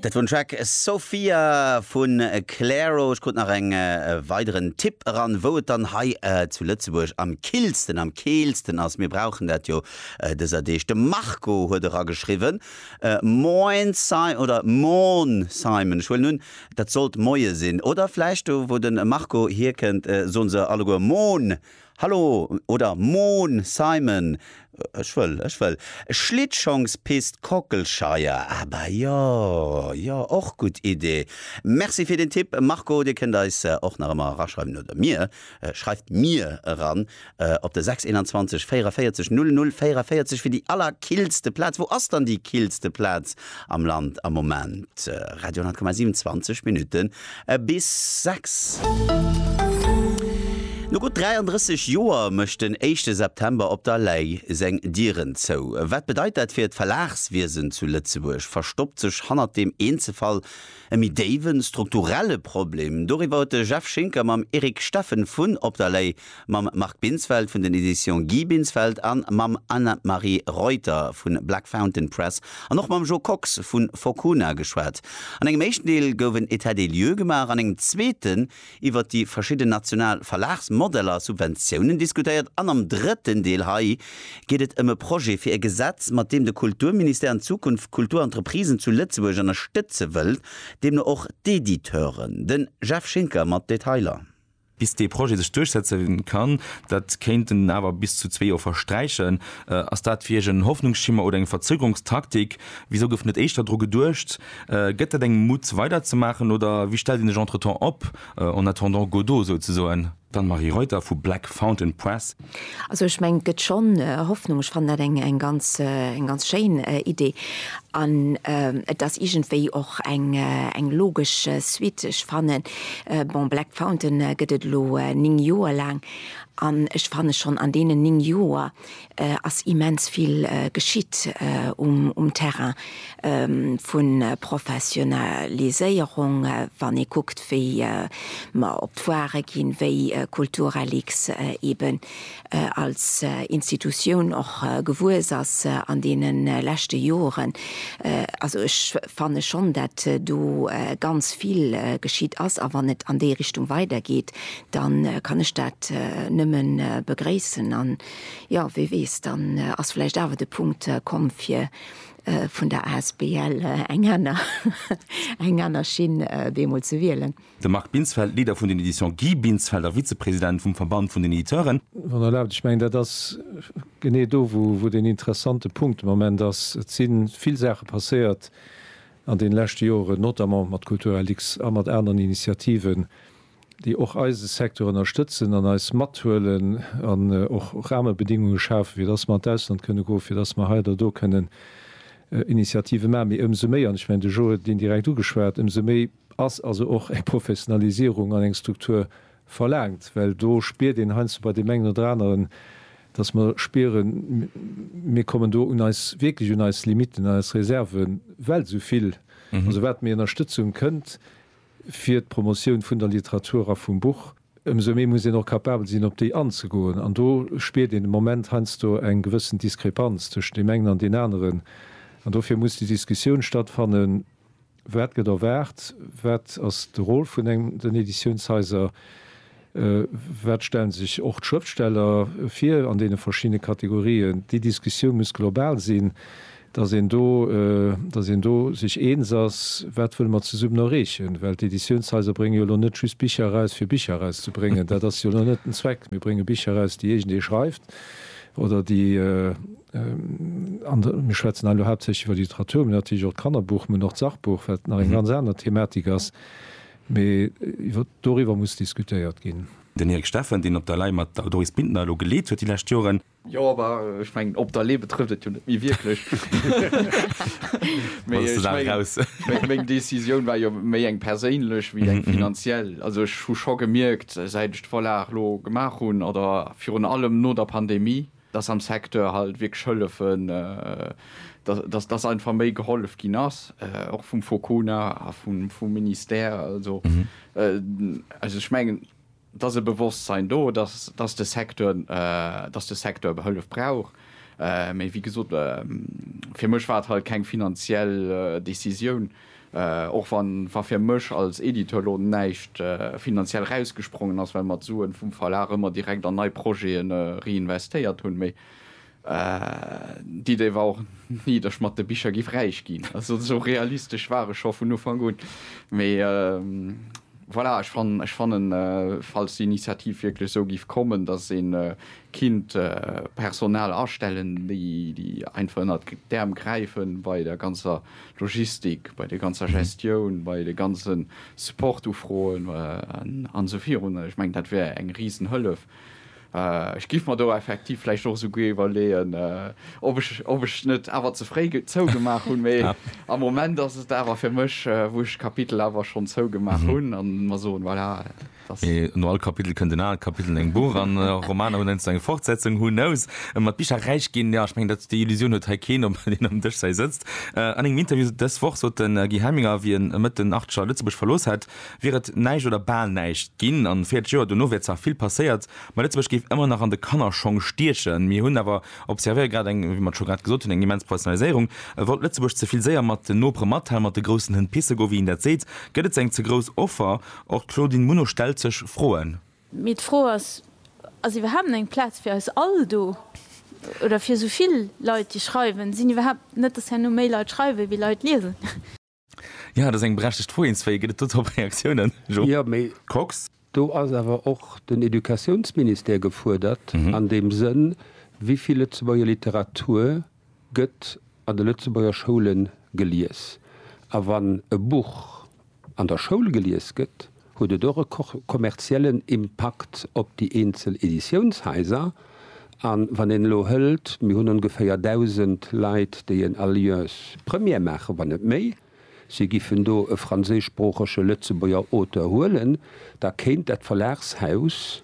Dat wor den Track Sophia vun Clairo. Ech krut nach eng weideren Tipp eran, wou et dann hei zu Lëtzebuerg am killsten, am keelsten ass. Mir brauchen dat jo dëser Deeg. De Marco huet erageschriwwen, Moin Simon, oder Morn Simon, ech huelen un dat sollt Moie sinn, oder vläicht do wou de Marco hierkënnt soen se alleguer Moon, Hallo oder Moon Simon, ech wëll, ech wëll Schlittschongspist Kockelscheier, ah bah jo, jo och gutt Idee. Merci fir den Tipp Marco, dir kënnt eis och nach ëmmer eraschreiwen oder mir, schreift mir eran op de 621 44 00 44 fir déi allerkillste Plaz. Wou ass dann déi killste Plaz Am Land am Moment, Radio 10,7, 20 Minutten bis 6. No gutt 33 Joer mécht den éischte September op der Lay seng Dieren zou. Wat bedeit dat fir d'Verlagswiesen zu Lëtzebuerg? Verstoppt sech hannert deem Eenzelfall e méi déiwen, strukturelle Problem? Doriwwer huet de Jeff Schinker mam Eric Steffen vun Op der Lay mam Marc Binsfeld vun den Editions Guy Binsfeld an mam Anne-Marie Reuter vu Black Fountain Press an och mam Jo Kox vu Fokuna geschwat. An engem éischten Deel gouf en Etat des lieux gemaach, an engem zweeten iwwer déi verschidden national Verlagsmodeller a Subventiounen diskutéiert an am drëtten Deel hei geet et ëm e Projet fir e Gesetz, mat deem de Kulturministère an Zukunft d'Kulturentreprisen zu Lëtzebuerg ënnerstëtze wëllt, deemno och d'Editeuren. Den Jeff Schinker mat Detailer. Bis dee Projet sech duerchsetze kann, dat kéinten awer bis zu zwee Joer versträichen. Ass dat fir Iech en Hoffnungsschimmer oder eng Verzögerungstaktik? Wisou gouf net éischter dru geduecht? Gëtt dat engem Mut weiderzemaachen oder wéi stellt een sech entretemps op, en attendant Godot souzesoen? D'Anne-Marie Reuter vu Black Fountain Press. Also ech mengen, et gëtt schonn Hoffnung. Ech fannen dat eng ganz schéin Idee an et ass iergendwéi och eng logesch Suite. Ech fannen, bon, Black Fountain gëtt et elo néng Joer laang an ech fanne schonn an deenen néng Joer ass immens vill geschitt um Terrain. vu Professionaliséierung, wann ee kuckt, wéi mer op d'Foire ginn, wéi Kulturreliq eeben als Institutioun och gewuess ass an deene leschte Joren. Also ech fanne schonn, dat do ganz vill geschitt ass. A wann et an déi Richtung weidergeet, da kann ech dat nëmme begréissen. An, jo, wie weess, dann ass vläicht awer de Punkt komm, fir Vun der asbl eng aner eng aner Schinn deemools ze wielen. De Marc Binsfeld, Leader vun den Editions Guy Binsfeld a Vizepresident vum Verband vun den Editeuren. Wann Der erlaabt, ech mengen, dat ass genee do, wou deen interessante Punkt de Moment ass. Et si vill Saache passéiert an deene leschte Joren, notamment mat Kulturlux a mat aneren Initiativen, déi och eise Secteur ënnerstëtzen an eis mathuelen an och Rahmebedingunge schafen, fir dass mer an d'Ausland kënne goen, fir dass mer hei oder do kënnen Initiative maachen. Mee ëmsou méi, an ech mengen, de Joe huet et indirekt ugeschwat, ëmsou méi ass also och eng Professionalisierung an eng Struktur verlaangt, well do spiert een heiansdo bei deem engen oder aneren, dass mer spieren, mir kommen do un eis, wierklech un eis Limitten, un eis Reserven, well esou vill, also wat méi Ënnerstëtzung kënnt, fir d'Promotioun vun der Literatur a vum Buch, ëmsou méi muss een och capabel sinn, op déi anzegoen. An do spiert een de Moment heiansdo eng gewëssen Diskrepanz tëschent deem engen an deen aneren. An dofir muss déi Diskussioun stattfannen, Wat gëtt erwaart? Wat ass de Rôle vun den Editiounshaiser? Wat stellen sech och d'Schrëftsteller vir an deene verschiddene Kategorien? Déi Diskussioun muss global sinn, datt een do, datt een do sech eens ass, wat wëlle mer zesummen erreechen. Well d'Editiounshaiser bréngen jo elo net just Bicher eraus, fir Bicher erauszebréngen. Dat ass jo elo net den Zweck. Mir brénge Bicher eraus, déi iergendee schreift oder déi an de, mir schwätzen hei elo haaptsächlech iwwer d'Literatur, mä natierlech och d'Kannerbuch, mä och d'Sachbuch, wat nach eng ganz aner Thematik ass, Mee iwwer doriwwer muss diskutéiert ginn. Den Eric Steffen, deen op der Lay mat der Doris Bintner elo geleet huet déi lescht Joren. Jo, awer ech mengen, op der Lay betrëfft et jo net méi wierklech. Mee ech mengen, meng Decisioun war jo méi eng perséinlech wéi eng finanziell. Also ech hu scho gemierkt, säit ech d'Vorlag elo gemaach hunn, oder virun allem no der Pandemie, dass am Secteur halt wierklech hëllefen, dass, dass einfach méi gehollef ginn ass, och vum Focuna a vum Ministère. Also, also ech mengen, et ass e Bewosstsein do, dass, dass de Secteur, dass de Secteur behëllef brauch. Mee wéi gesot, fir mech war et halt keng finanziell Décisioun. Och wa fir mech als Editeur elo näischt finanziell rausgesprongen ass, well mer d'Suen vum Verlag ëmmer direkt an nei Projete reinvestéiert hunn, mee d'Idee war och ni, datt ech mat de Bicher giff räich ginn. Also esou realistesch war ech scho vun Ufank un. Mee voilà, ech fannen, falls d'Initiativ wierklech esou giff kommen, datt een Kinnt Personal astellen, déi déi einfach ënnert d'Äerm gräifen bei der ganzer Logistik, bei der ganzer Gestioun, bei de ganze Support-Ufroen an esou virun. Ech mengen, dat wär eng risen Hëllef. Ech giff mer do effektiv vläicht och esou guer iwwerleeën, ob ech ob ech net awer ze fréi zougemaach hunn. Mee am Moment ass et awer fir mech, wou ech d'Kapitel awer schonn zougemaach hunn an mer soen, voilà. Mee no all Kapitel kënnt en anert Kapitel an engem Buch an Romaner hunn heiansdo eng Fortsetzung, who knows? Mat Bicher räich ginn, jo, ech mengen, dat déi Illusioun huet hei keen, obwuel een am Dëschzäi sëtzt. An engem Interview dës Woch sot de Guy Helminger, wéi en Mëtt den Archer Lëtzebuerg verlooss hätt, wier et näischt oder bal näischt ginn an 40 Joer dono wier zwar vill passéiert, ma Lëtzebuerg géif ëmmer nach an de Kannerschong stiechen. Mir hunn awer observéiert, grad eng, wéi mer et scho grad gesot hunn, eng immens Professionaliséierung. E wollt Lëtzebuerg ze vill séier mat den Nopere matellen, mat de groussen Hënn pisse goen, wéi een dat seet. Gëtt et ze eng ze grouss Offer? Och d'Claudine Muno stellt sech Froen. Mee d'Fro ass, Ass iwwerhaapt eng Plaz fir eis all do? Oder fir esou vill Leit, déi schreiwen? Sinn iwwerhaapt, net datt herno méi Leit schreiwen, wéi Leit liesen? Jo, dat ass eng berechtegt Fro. Eenzwéi gëtt et do drop Reaktiounen, Jo Kox? Do ass awer och den Educatiounsministère gefuerdert an deem Sënn, wéi vill Lëtzebuerger Literatur gëtt an de Lëtzebuerger Schoule gelies. A wann e Buch an der Schoul gelies gëtt, huet et och e kommerziellen Impakt op déi eenzel Editiounshaiser. A wann een elo hëlt, mir hunn ongeféier 1.000 Leit, déi en Alliance Première maachen, wann net méi, si giffen do e franséischsproochege Lëtzebuerger Auteur huelen, da kéint dat Verlagshaus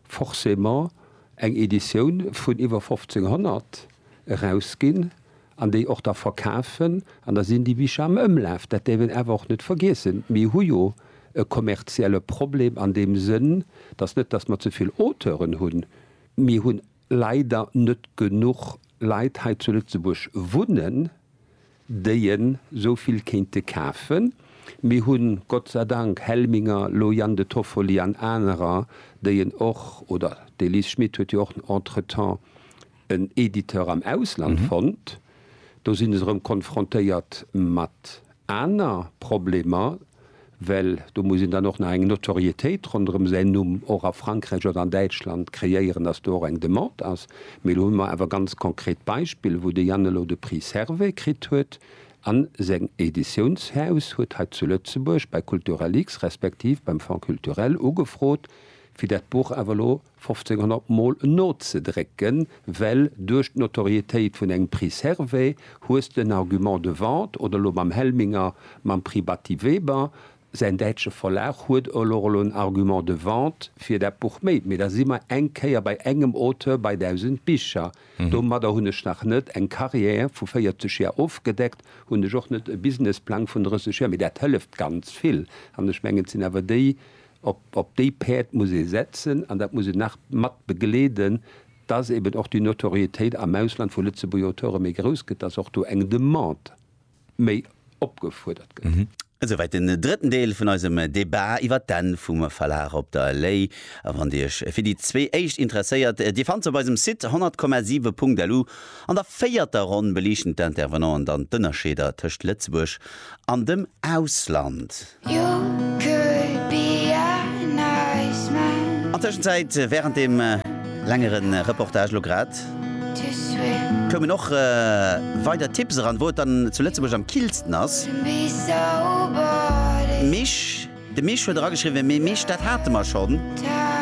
forcément eng Editioun vun iwwer 1.500, erausginn an déi och da verkafen an da sinn déi Bicher am Ëmlaf. Dat däerf een awer och net vergiessen. Mir hu jo e kommerzielle Problem an deem Sënn, dass net dass mer ze vill Auteuren hunn, mir hu leider net genuch Leit hei zu Lëtzebuerg wunnen, déi en esou vill kéinte kafen. Mir hu Gott sei Dank Helminger, Loyang de Toffoli an anerer, déi en och, oder d'Elise Schmit huet jo och entretemps, en Editeur am Ausland fonnt, do sinn ech erëm konfrontéiert mat aner Problemer, well do muss een dann och nach eng Notoriétéit ronderëm säin Numm och a Frankräich oder an Däitschland kreéieren, dass do och eng Demande ass. Mee elo hu mer awer ganz konkret Beispiller, wou de Yann elo de Prix Servais kritt huet a seng Editiounshaus huet hei zu Lëtzebuerg bei Kulturalix respektiv beim Fonds culturel ugefrot, fir dat Buch awer elo 1500 mol nozedrécken, well duerch d'Notorietéit vun engem Prix Servais hues de en Argument de vente, oder elo mam Helminger mam Prix Batty Weber, säin däitsche Verlag huet elo elo en Argument de vente fir dat Buch méi. Mee da si mer eng Kéier bei engem Auteur bei 1000 Bicher. Domadder hunn ech nach net eng Carrière vu 40 Joer ofgedeckt, hunn ech och net e Businessplang vun 30 Joer, mee dat hëlleft ganz vill. An ech mengen, et sinn awer déi Op déi Päerd muss ee setzen an dat muss een nach mat begleeden, dass eben och déi Notoriétéit am Ausland vu Lëtzebuerger Auteure méi grouss gëtt, dass och do eng Demande méi opgefuerdert gëtt. Esouwäit den drëtten Deel vun eisem Debat iwwer d'Enn vum Verlag op der Lay. A wann Dir Iech fir déi zwee éischt interesséiert, Dir fannt se op eisem Site 100,7.lu. An der véierter Ronn beliichten d'Intervenanten dann d'Ënnerscheeder tëscht Lëtzebuerg an dem Ausland. An Tëschenzäit, wärend deem längere Reportage elo grad, koumen och weider Tipps eran, wou et dann zu Lëtzebuerg am killsten ass. Misch, de Misch huet erageschriwwen, Mee Misch, dat hate mer schonn,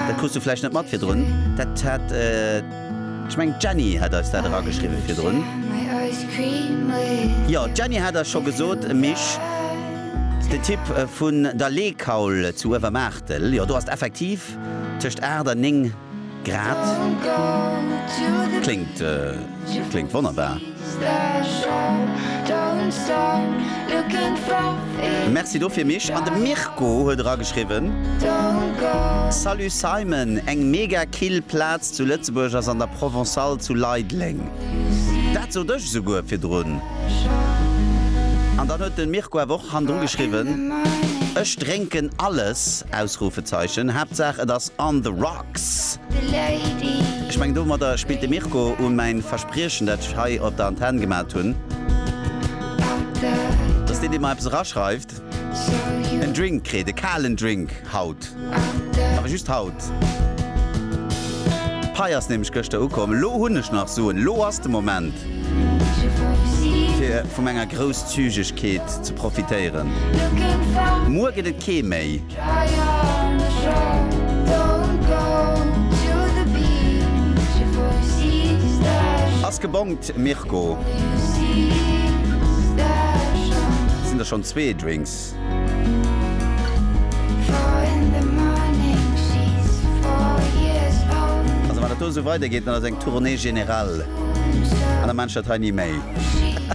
dat krus du vläicht net mat virdrun, dat hat. Ech mengen d'Jenny hat eis dat erageschriwwen virdrun. Jo, d'Jenny hat eis scho gesot, Mich, den Tipp vun der Leekaul zu Uewermaartel, jo do ass et effektiv tëscht 8 an 9 Grad. Kléngt, kléngt wonnerbar. Merci dofir Mich. An de Mirko huet era geschriwwen, Salut Simon, eng mega kill Plaz zu Lëtzebuerg ass an der Provençale zu Leideleng. Dat sot ech esouguer virdrun. An dann huet den Mirko awer och hannendru geschriwwen, Ech drénken alles! Haaptsaach et ass on the rocks! Ech mengen domadder spillt de Mirko un mäin Verspriechen dat ech hei op der Antenn gemat hunn, dass deen deen mer eppes eraschreift en Drink kritt, e kalen Drink haut, awer just haut. D'Pei ass nämlech gëschter ukomm, elo hunn ech nach Suen, elo ass de Moment fir vu menger Grousszügegkeet ze profitéieren, muer gëtt et kee méi. Ass gebongt, Mirko. Sinn der schonn zwee Drinks? Also wann et do esou weidergeet, dann ass eng Tournée générale an da maachen ech dat hei ni méi.